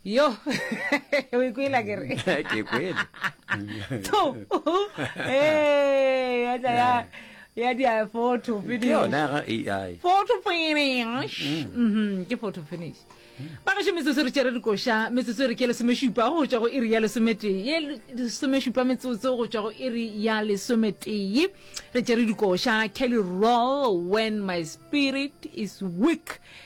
yo o ikwela ke re ke kwele to eh ya tla ya ya di a photo ke finish yona ya ga ai photo finish mhm ke photo finish ba gašo metsotso re tšere dikoša metsotso e re ke lesomešupa go tšwa go iri ya lesometee ye lesomešupa metsotso go tšwa go iri ya lesometee re tšere dikoša kelly roll when my spirit is weak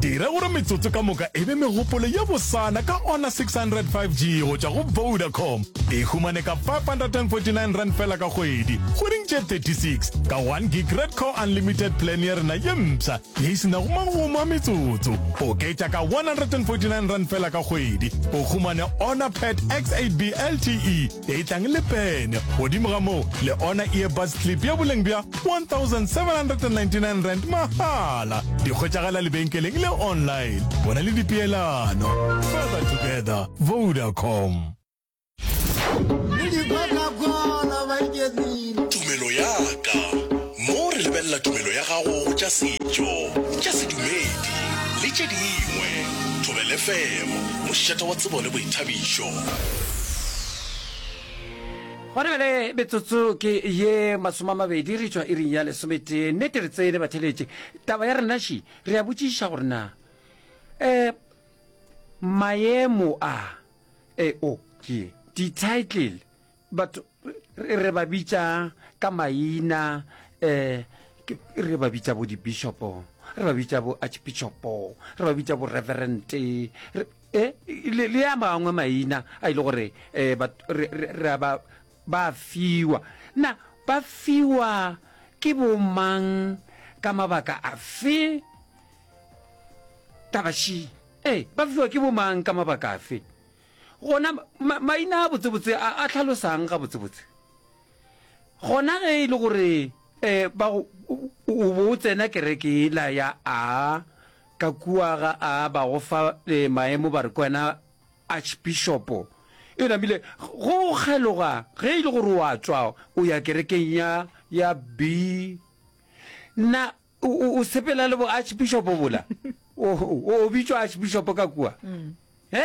Dira gore metsotso ka moka e be megopolo ye bosana ka Honor 600 5G go tšwa go Vodacom. E humane ka 549 rand fela ka kgwedi, kgweding tše 36, ka 1 gig Red Core Unlimited plan ya rena ye mpsha ye e se nago magomo a metsotso. Oketša ka 149 rand fela ka kgwedi, o humane Honor Pad X8B LTE e tlang le pene, godimo ga moo le Honor Earbuds Clip ya boleng bja R1,799 mahala. Di hwetšagala lebenkeleng le online. Bona le dipeelano. Further together, Vodacom. Tumelo ya ka. Mo re lebelela tumelo ya gago go tša setšo, tša sedumedi le tše dingwe. Thobel FM, mošeta wa tsebo le boithabišo. Go re bjale metsotso ke ye masomamabedi re tšwa iring ya lesometee. Nnete re tsene batheletše. Taba ya rena ši re a botšiša gore na um maemo a eo ke di-title batho re ba bitša ka maina um re ba bitša bo di-bishopo re ba bitša bo archbishopo re ba bitša bo reverente E, le, le a mangwe maina a ile gore eh, ba, re, re, re a ba, ba fiwa na ba fiwa ke bomang ka mabaka afe tabaši ee eh, ba fiwa ke bomang ka mabaka afe gona ma, maina a botsebotse a, a tlhalosang ga botsebotse gona ge e le gore um ba o bo o tsena kereke ela ya a Ka kua ga a ba go fa maemo ba re ke wena Archbishopo. Eona bile go kgeloga ge e le gore o a tswa o ya kerekeng ya ya B na o o sepela le bo Archbishopo bola. O o bitswa Archbishopo ka kua. He?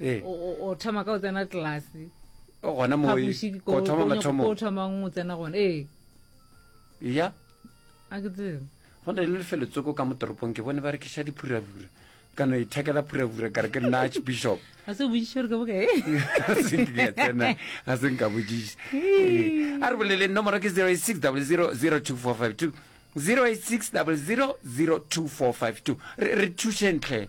eh. o thoma ka o tsena tlelase gona mothoma mathomo thomang o tsena gona ee ya a ke tsebe go na le lefelo tsoko ka mo toropong ke bone ba rekiša diphurabura ka no ithekela phurabura kare ke nna archbishop ga se bojiša gore ka bokae ga se nka bojiša a re boleleng nomoro ke 06 00 02452 086 00 02452 re thušentlhe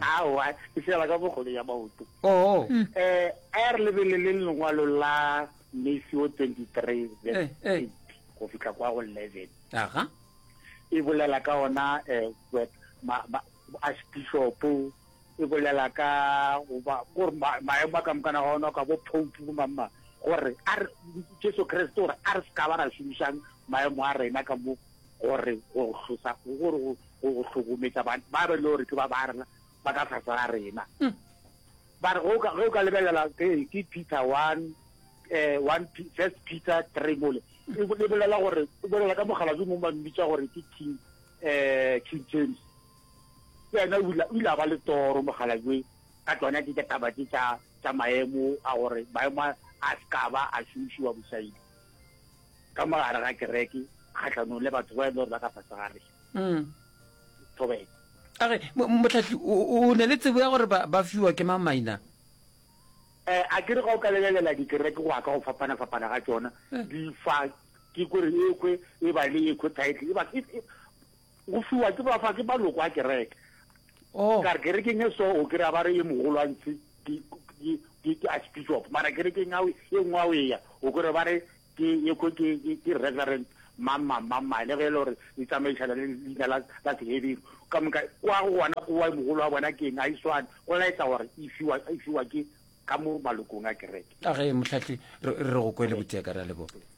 Aowa, e fela ka bokgolo ya maoto. Oo. Eh, a ya re lebeleleng lengwalo la Matthew 23 verse 8 go fihla kwa go 11. Aha. E bolela ka ona eh ba ma, ma, archbishop e bolela ka goba gore maemo a ka mokana ga ona ka bo pope bo mamma gore a re Jesu Kriste gore a re se ka ba ra šomišang maemo a rena ka mo Gore go go hlosa, gore go go go hlokometsa ba ba be le gore ke ba ba rena ba ka tlase ga rena. Ba re go ka go ka lebelela ke ke Peter 1 eh 1 P- first Peter 3 mole. E bo- e bolela gore e bolela ka mogala jo mongwe ba mmitsa gore ke King eh King James. Ke ena o ile o ile a ba le toro mogala jo ka tsona ke tsa taba tse tsa tsa maemo a gore maemo a a se ka ba a šomišiwa bosaidi. ka mo gare ga kereke kgatlhanong le batho ba e le gore ba ka fase gare mm. thobeko age motlhatlhi o ne le tsebo ya gore ba fiwa ke mang maina um a kere ga o ka lebelela dikereke go ya ka go fapana-fapana ga tsona eh. di fa ke kore ekwe e ba le ekwe title e Go fiwa ke bafa ke maloko a kereke. Oh. Ka re kerekeng e so o kry-a ba re e mogolwantsi ke ke- ke- ke archbishop mara kerekeng ao e nngwe ao eya o kry ba re ke ekwe ke ke- ke reverend mang mang mang mang le ge e le gore e tsamaišana le leina la la seheberu ka moka kwa go gona kowa e mogolo wa bona ke eng a e swane go laetsa gore e fiwa e fiwa ke ka mo malokong a kereke a ge mohlahlwi re re go kwele botseka ra leboga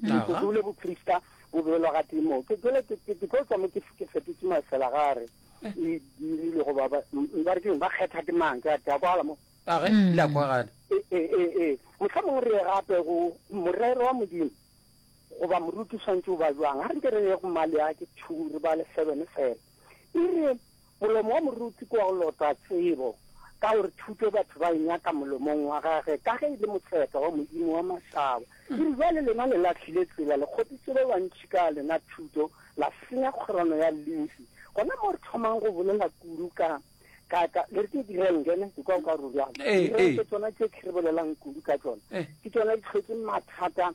Metsotso le boprista bo beelwa ga tee moo. Ke jale, ke, ke, ke tlo tšwa mo ke, ke fetotše masela ga re e dirile go ba, ba, ba re ke eng, ba kgetha ke mang, ke a, ke a kwala mo. A ge, le a kwagala. E, e, e, e. Mohla mongwe re ye gape go morero wa Modimo, goba moruti o swantše o ba bjang. Ga re nke re ye go Maleaki two, re bale seven fela. E re, Molomo wa moruti ke wa go lota tsebo, ka gore thuto batho ba e nyaka molomong wa gage, ka ge e le motseka wa Modimo wa mašaba. E re, Bjale lena le lahlile tsela, le kgopitše ba bantši ka lena thuto, la senya kgorano ya Lefi. Gona moo re thomang go bolela kudu ka, ka, ka, le re ke direnke, ne, ke kwa o ka re o bjalo. Direnke tsona tše ke re bolelang kudu ka tšona, ke tšona di tlhotše mathata.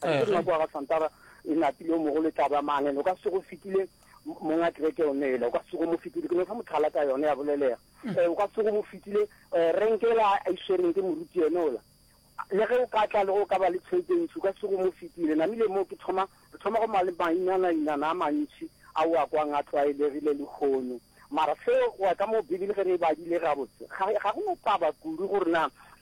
Ka ke nna kwa ga Santara e napile o mogolo e tla ba mangene o ka se go fetile monga kereke o nela o ka se go mo fetile ke no fa mothala ka yone ya bolelega eh, o ka se go mo fetile eh, renkela a iswereng ke moruti yone ola le ge o ka tla le go ka ba le tšhelete ntši o ka se go mo fetile namile moo ke thoma re thoma go male mainanainana a mantši a o a kwang a tlwaelegile lehono mara seo wa ka moo bibele ge re e badile gabotse ga go no taba kudu gore na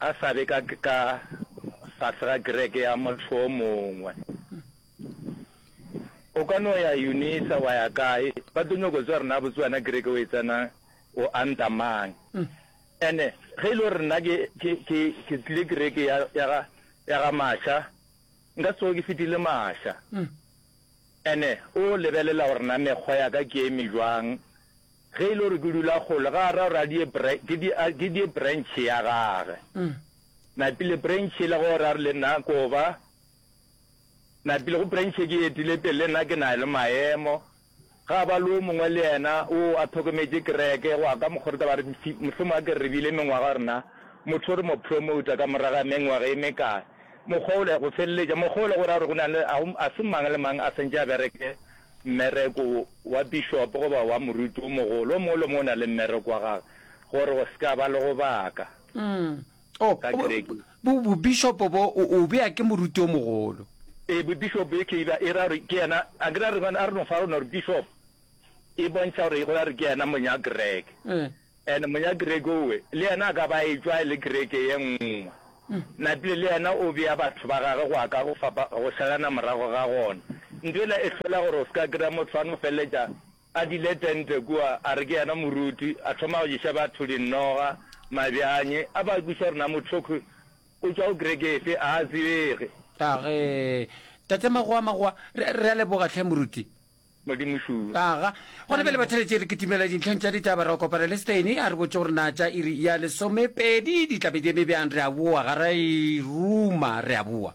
A sa be ka ka fase ga kereke ya motho o mongwe. O ka no ya Unisa wa ya kae, ba tlo nyoko tswa rena botse wena kereke o e tsenang o anta mang. Ene ge e le gore nna ke ke ke ke tlile kereke ya ya ga ya ga Masha nka se tsoge ke fetile Masha. Ene o lebelela gore na mekgwa ya ka ke eme bjang. Ge e le gore ke dula kgole ga a ra gore ke die branch ya gage. Napile branch e le go ra re le nna ko ba. Napile go branch e ke etile pele le nna ke na le maemo. Ga ba le o mongwe le yena o a thokometše kereke, go a ka mokgore taba re mfi, mohlomong a kere re bile mengwaga rena, motho re mo promouta ka morago ga mengwaga e mekae. Mokgwa ole, go feleletša, mokgwa ole go ra gore go na le, a se mang le mang a swantše a bereke mmereko wa bišopo goba wa moruti o mogolo. O mongwe le o mongwe o na le mmereko wa gagwe gore go se ka ba le go baka. Umm, Oh, ka Greki. bo, bobishopo bo o, o bea ke moruti o mogolo. Ee, bobishopo e ke e bea, e ra gore ke yena, a ke ra re bana, a re no fa rona gore bishop e bontšha gore e go ra re ke yena monya Greke. Eh. And monya Greke owe, le yena a ka ba etšwa e le Greke ye nngwe. Mm. Napile le yena o bea batho ba gage go aka go fapa, go salana morago ga gona. Nto ela e hlola gore o se ka kry-a motho a no feleletša A dile tente kua, a re ke yena moruti, a thoma go ješa batho dinoga, mabjanye, a ba kweša gore na mothokgwi o tšwa go kereke efe, a a tsebege. A re, Tate Magowa, Magowa, re, re a leboga, hle moruti. Modimo šuwe. Aga, gona bjale batheletše re kitimela dintlheng tša ditaba, ra kopana le Steini, a re botše gore na tša iri ya lesomepedi di tla be di eme bjang, re a boa, ga ra e ruma, re a boa.